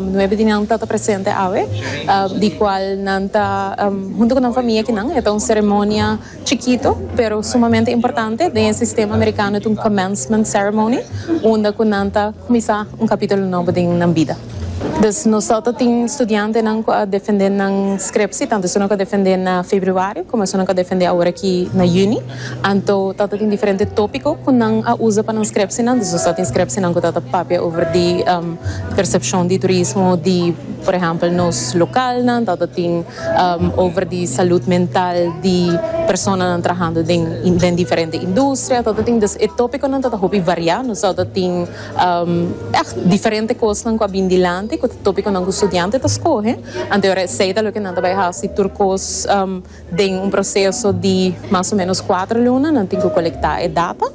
Nuebe di nan tata presente awe, di cual nan ta hunto cu nan famia kinan. E ta un ceremonia chikito pero sumamente importante. Den e sistema Americano ta un commencement ceremony unda cu nan ta cuminsa un capitulo nobo den nan bida. Dus nos ta ta tin studiantenan cu a defende nan scriptie, tanto esunnan cu a defende na Februario como esunnan cu a defende awor aki na Juni. Anto tata tin diferente tópiko ku nan a usa pa nan skrèpsenan. Desos ta tin skrèpsenan ku ta ta papia over di persepshon di turismo di, por ehèmpel, nos lokalnan. Ta ta tin over di salud mental di personanan trahando den den diferente industria. Ta ta tin des e tópikonan ta ta hopi variá. Nos ta ta tin èg diferente kosnan ku a bin dilanti ku ta tópikonan ku studiante ta skohe. Anto esei ta loke nan ta bai hasi tur kos. Den un proseso di mas o menos kuater luna nan tin ku kolektá e data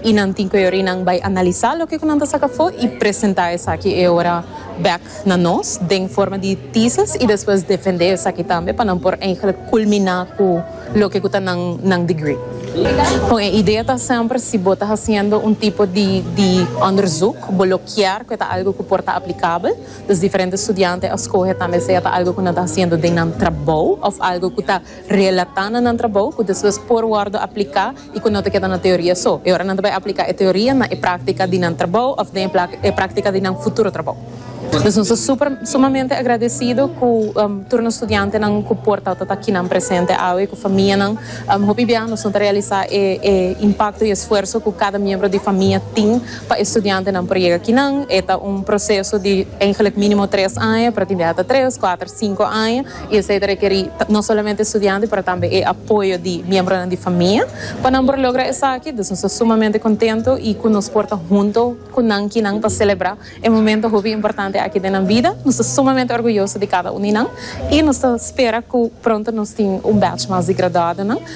i nan tin ku e ora i nan bai analisá loke ku nan ta saka afó i presentá esaki e ora bèk na nos den forma di tesis i despues defendé esaki tambe pa nan por eingelik kulminá ku loke ku ta nan nan degree. Bon e idea ta semper si bo ta hasiendo un tipo di di onderzoek bo lo kier ku e ta algu ku por ta aplikabel. Los diferente studiante a scoge tambe sea ta algo cu nan ta haciendo den nan trabou of algo cu ta relata na nan trabou cu despues por wordo aplica y cu no ta keda na teoria so. E ora nan ta bay aplica e teoria na e practica di nan trabou of den e practica di nan futuro trabou. Nos nos ta super sumamente agradecido cu tur nos studiantenan cu por ta ta akinan presente awe cu famianan. Hopi bia nos no ta realisa e impacto y esfuerso cu cada miembro di famia tin. Pa e studiantenan por yega kinan, e ta un proseso di eigenlijk minimo tres aña, pero tin biaha ta tres, kuater, sinku aña, i esei ta rekerí no solamente e studiante pero tambe e apoyo di miembronan di famia pa nan por logra esaki. Dus nos ta sumamente kontentu i ku nos por ta huntu ku nan kinan pa selebrá e momento hopi importante aki den nan bida. Nos ta sumamente orguyoso di kada un di nan i nos ta spera ku pronto nos tin un bèch mas di graduadonan.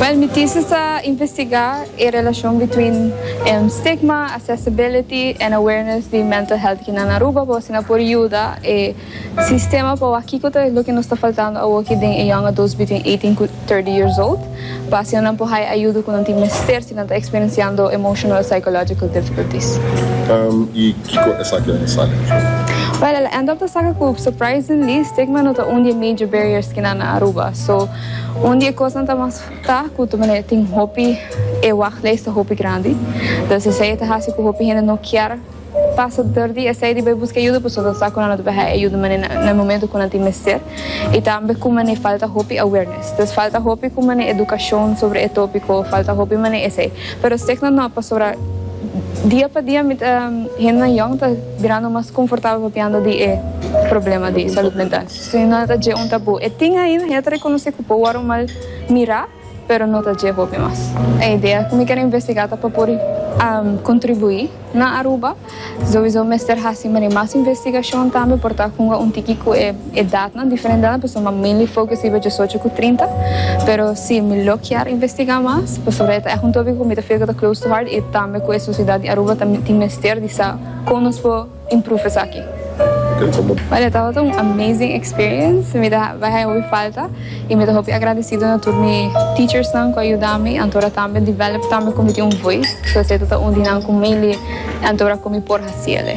Wel mi thesis ta investigá e relashon between stigma, accessibility en awareness di mental health kinan Aruba pa asina por yuda e sistema pa wak kiko ta loke nos ta faltando awor aki den e young adults between eighteen ku thirty years old pa asina nan por haya ayudo ku nan tin mester si nan ta experienciando emotional o psychological difficulties. I kiko esaki a sali na fin? Wel el a end up ta saka ku surprisingly stigma no ta un di e major barriers kinan na Aruba so. Un di e kosnan ta mas ta ku ta manera tin hopi e wachtlijst ta hopi grandi. Dor si esei e ta hasi ku hopi hende no kier pasa dor di esei di bai buska yuda pasobra nan sa ku nan lo ta bai haña e yuda manera na e momento ku nan tin mester i tambe ku manera falta hopi awareness. Entonces falta hopi ku manera edukashon sobra e topiko, falta hopi manera esei. Pero signo no pasobra dia pa dia mi ta, hendenan yòn ta birando mas komfortabel papiando di e problema di salud mental. Esei no ta dje un tabú. E tin ainda, ya ta rekonosé ku por wòrdu mal mirá, pero no ta dje hopi mas. E idea ku mi ken investigá ta pa por kontribuí na Aruba. Souizo mester hasi mane mas investigashon tambe por ta hunga un tiki ku e edatnan, diferentenan, pasobra mi a mainly focus riba diesocho ku trinta. Pero si mi lo kier investigá mas, pasobra e ta ègt un tópiko ku mi ta feel ku ta close to heart i tambe ku e sosiedad di Aruba ta tin mester di sa kon nos por. in proef esaki. Well e tabata un amazing experience, mi ta bai haña hopi falta y mi ta hopi agradecido na tur mi teachersnan cu a yuda mi anto ora tambe develop tambe cu mi tin un voice, so esey ta ta un di nan cu mainly anto ora cu mi por haciele.